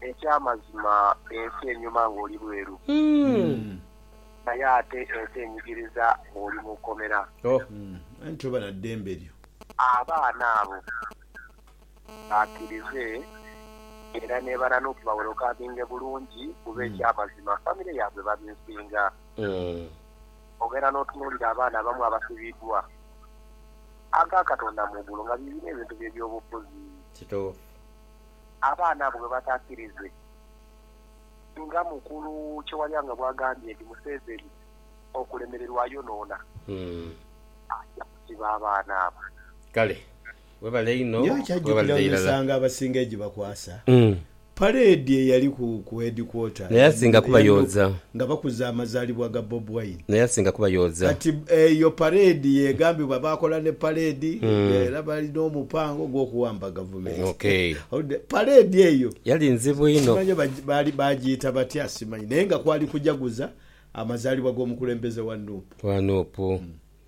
Eky'amazima ensi enyuma ng'oli bweru, naye ate ensi enyigiriza ng'oli mu kkomera. Oh, aye toba na ddembe lyo. Abaana abo bakirize era nebananuke bawerokaminge bulungi kuba eky'amazima famire yaabwe babinsinga. Ogenda n'otunuulira abaana abamu abasibiddwa aga Katonda mu igulu nga biibino ebintu bye by'obufuzi. Kituufu. abaana bo bwe bataakirize nga mukulu Kyewalyanga bw'agambye nti Museveni okulemererwa ayonoona, aja kusiba abaana abo. Kale webale inho Nyo okyajjukira webalire irala. emisango abasinga egibakwasa. Parade eyali ku ku headquarter Naye asinga kuba eya nup yooza. nga bakuza amazalibwa ga Bob Wine. Naye asinga kuba yooza. Kati eyo parade yegambibwa bakola ne parade era balina omupango ogwokuwamba gavumenti. Pareedi eyo yali nzibu inho. Simanyi oba baali baagiyita batya, simanyi, naye nga kwali kujaguza amazaalibwa g'omukulembeze wa nup. Wa nup,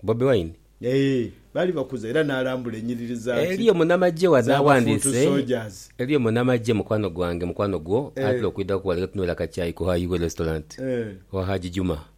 Bobi Wine? Ee, baali bakuza era n'alambula enyiriri za ki, Eriyo munamagye wano aghandiise, eriyo munamagye mukwano gwange, mukwano gwo, atera okwidhaku ghale nga tunywera akakyayi ku High Way Restaurant, owa Haji Juma.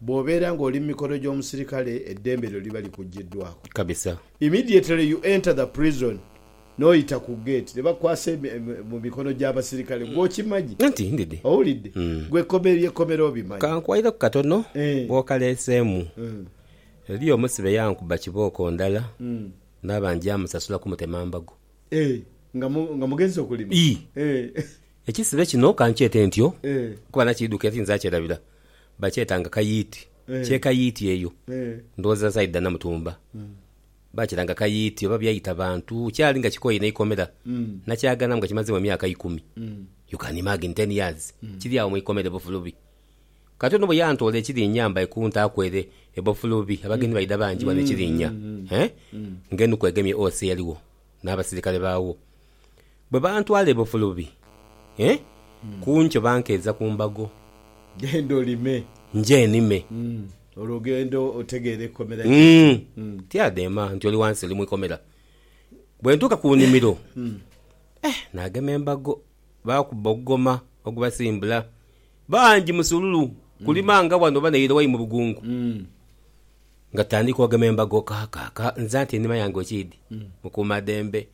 Bw'obeera nga oli mu mikono gy'omusirikale, eddembe lyo liba likuggyiddwaako. Kabisa. Immediately you enter the prison, n'oyita ku gate, ne bakukwasa mu mikono gy'abasirikale. Gwe okimanyi? Anti ndidhi. Owulidde? Gwe ekkomero ly'ekkomera obimanyi? Kankwayireku katono, bw'okaleeseemu, eriyo omusibe yankuba kibooko ndala naaba njamusasula kumutema mbago. Eeh, nga mugenze okulima? Ii. Ekisibe kino kankyete ntyo kuba nakiidhuka eri nze akyerabira. Bakyetanga kayiiti. Kye kayiiti eyo. Ndhowooza nsaidha dha Namutumba. Baakiranga kayiiti oba byaita bantu. Kyali nga kikooye n'eikomera. Nakyaganhamu nga kimazeemu emyaka ikumi. You can imagine ten years kiri agho mu ikomera e Bofulubi. Kati ono bwe yantoola e Kirinya mba ikuntaaku ere e Bofulubi, abagenyi baidha bangi ghano e Kirinya. Hee? Ng'enuku egemye OC eyaligho n'abasirikale baagho. Bwe bantwala e Bufulubi, e ku nkyo bankeeza ku mbago. Genda olime. Nje nime. Olwo ogende otegeere eikomera kye ki. Umm. Tya dheema nti oli wansi oli mu ikomera. Bwe ntuuka ku nimiro, e naagema embago baakubba ogugoma ogubasimbula. Bangi musululu kulima nga wano oba naire wai mu bugungu. Nga tutandika ogema embago, Kaaka, ka, nze anti enima yange okiidhi, mukuumadhembe.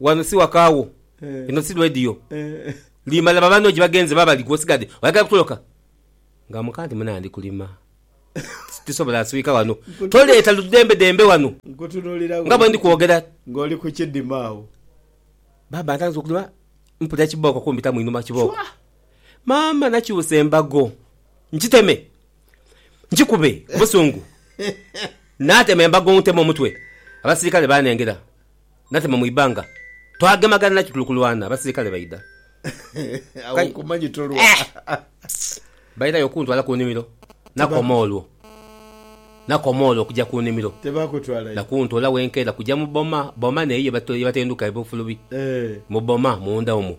Wano si waka wo. Eno si radio. Limala ba banno gyebagenze baba bali gwe osigadde oyagala kutoloka? Nga muka nti muna ndi kulima tisobola nswika wano. Toleeta ludembedembe wano nga bwendi kwogera. Nga oli ku kidima agho. Baba ntandise okulima mpulira kibooko kumbitamu inhuma kibooko. Maama nakyusa embago nkiteme. njikube ku busungu. Natema embago nteme omutwe, abasirikale baanengera. Natema mu ibanga, twagemagana naki tuli kulwana, abasirikale baidha. Agho nkumanyi tolwa. Baidhagho okuntwala ku nimiro, nakoma olwo. Nakoma olwo okuja ku nimiro. Na kuntola wenkeera kuja mu boma. Boma n'eyo ye batenduka ebifulubi, mu boma munda omwo.